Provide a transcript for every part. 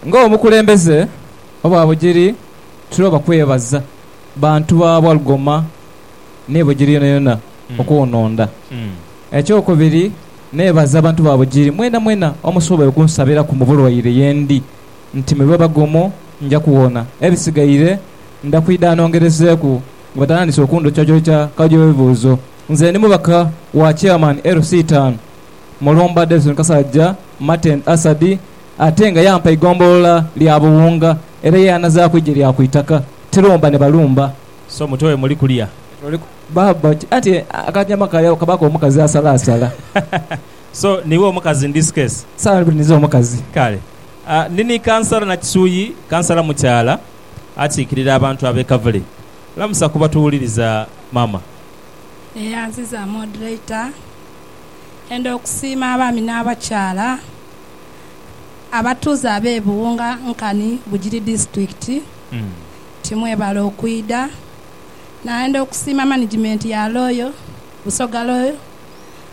Ng'omukulembeze owa Bugiri tuloba kwebaza bantu ba Walugoma ni Bugiri yonayona okunhonda. Ekyokubiri nebaza bantu ba Bugiri mwenamwena omusobola okunsabiraku mu bulwaire yendi nti mu biboba gumu nja kuwona. Ebisigaire nda kwidha nongerezeeku nga batandise okundhokyakyokya kajoebuuzo. Nze ndi mubaka wa Chairman LC taanu Mulumba Davidson Kasajja Martin Asadi ate nga yampa eigombolola lya Buwunga era ye yanazaaku eigye lya ku itaka Tirumba ni Balumba. So mutwe we muli kulya. Baaba ki anti akanyama kalya kabaaku omukazi asalaasala. So niiwe omukazi in this case? Saala buli ninze omukazi. Kale. Ndi ni Kansala Nakisuyi, Kansala mukyaala akiikirira abantu ab'e Kavule. Lamusa kuba tuwuliriza mama. Neyanziza moderator enda okusiima abaami n'abakyaala abatuuze abe Buwunga Nkani Bugiri District nti mwebale okwidha. Nayenda okusiima management ya Royal Busoga Royal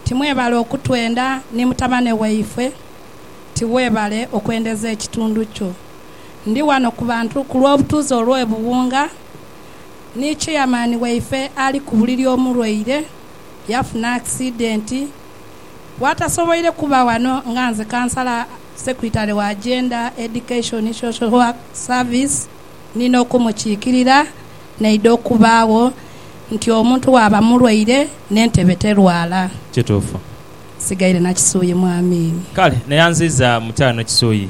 nti mwebale okutwenda ni mutabane waifwe nti webale okwendeza ekitundu kyo. Ndi wano ku bantu ku lw'obutuuze olw'e Buwunga, ni cheyamaani waife ali ku buliri omulwaire yafuna akisidenti bwatasoboire kuba wano nga nze kansala Secretary wa Gender, Education, Social Work Service ni n'okumukiikirira naidha okubaagho nti omuntu bwaba mulwaire n'entebe terwala. Kituufu. Nsigaire na Kisuyi mwami. Kale, neyanziiza mukyala ne Kisuyi.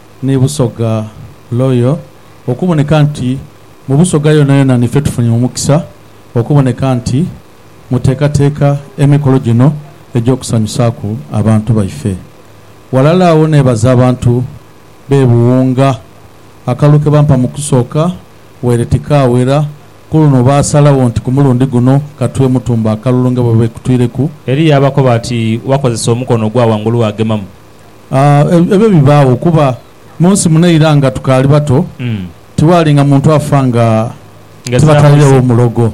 Ni Busoga Royal okuboneka nti mu Busoga yonayona nife tufunye omukisa okuboneka nti muteekateeka emikolo gino egy'okusanyusaaku abantu baife. Ghalala agho neebaza abantu b'e Buwunga akalulu ke bampa mu kusooka waire tikaawera, ku luno baasalagho nti ku mulundi guno katue Mutumba akalulu nga bwe beekutwireku. Eriyo abakoba ati wakozesa omukono ogwa ghangulu waagemamu. Ebyo bibaagho kuba mu nsi muno eira nga tukaali bato, tiwaalinga muntu afa nga tibatwairegho mulogo.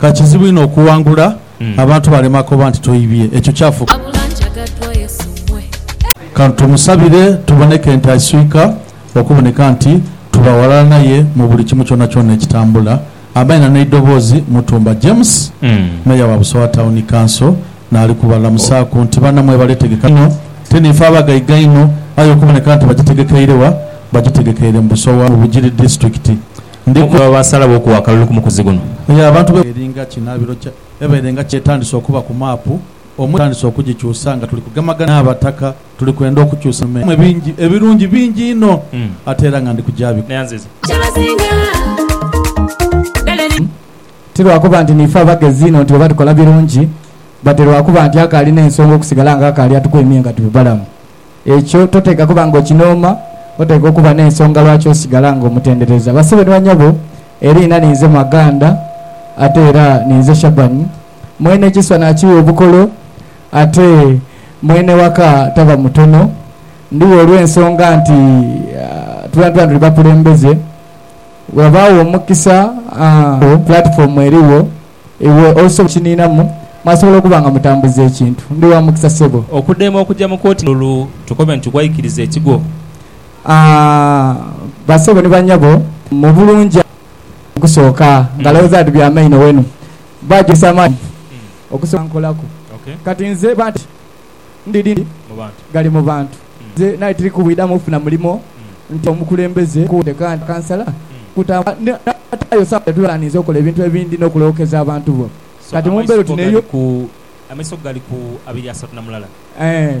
Ka kizibu inho okuwangula abantu balema koba nti toibye. Ekyo kyafuuka. Ka tumusabire tuboneke nti aiswika okuboneka nti tuba ghalala naye mu buli kimu kyonakyona ekitambula. Abaina n'eidhoboozi Mutumba James, Meeya wa Busowa Town Council naali ku balamusaaku nti bana mwebale tegeka inho te niife abagaiga inho aye okuboneka nti bagitegekeire wa? Bagitegekeire mu Busowa mu Bugiri Disitulikiti. Ndi. Baasalawo okuwa akalulu ku mukuzi guno. Eyo abantu be. Eringa kinaabiro kya. Ebeere nga kyetandise okuba ku maapu omuli. Etandise okugikyusa nga tuli kugemagana n'Abataka. Tuli kwenda okukyusa mu mwe bingi, ebirungi bingi inho, ate era nga ndi kugyabikola. Ti lwa kuba nti niife abagezi inho nti bwe batukola birungi, but lwa kuba nti akaali n'ensonga okusigala nga akaali atuku emye nga tuli balamu. Ekyo toteekwa kuba nga okinooma, oteekwa okuba n'ensonga lwaki osigala nga omutendereza. Basebo ni banyobo, eriina ninze Maganda ate era ninze Shaban. Mwene ekiswa naakigha obukolo. Ate mwene waka taba mutono ndhigho olw'ensonga nti twena tuli bakulembeze. Bweghabaagho omukisa agho pulatifoomu erigho, iwe osobola okukiniinamu mwasobola okuba nga mutambuza ekintu. Ndi wa mukisa ssebo. Okudema okuja mu kooti n'olu tukobe nti gwaikiriza ekigwo. Aah bassebo ni bannyabo, mubulungi. Okusooka, nga lowoza ati bya maino wenu. Baagisa amaani okusobola obankolaku. Kati nze banti ndi dindi gali mu bantu. Nze nali tiri kubwidhamu kufuna mulimo nti omukulembeze akuute kandi kansala kutambula n'ataayo sawa dha tubera ninze okola ebintu ebindi n'okulookeza abantu bo. Kati mu mbeera oti n'eyo. Amaiso go gali ku abiri asatu na mulala. Eeh.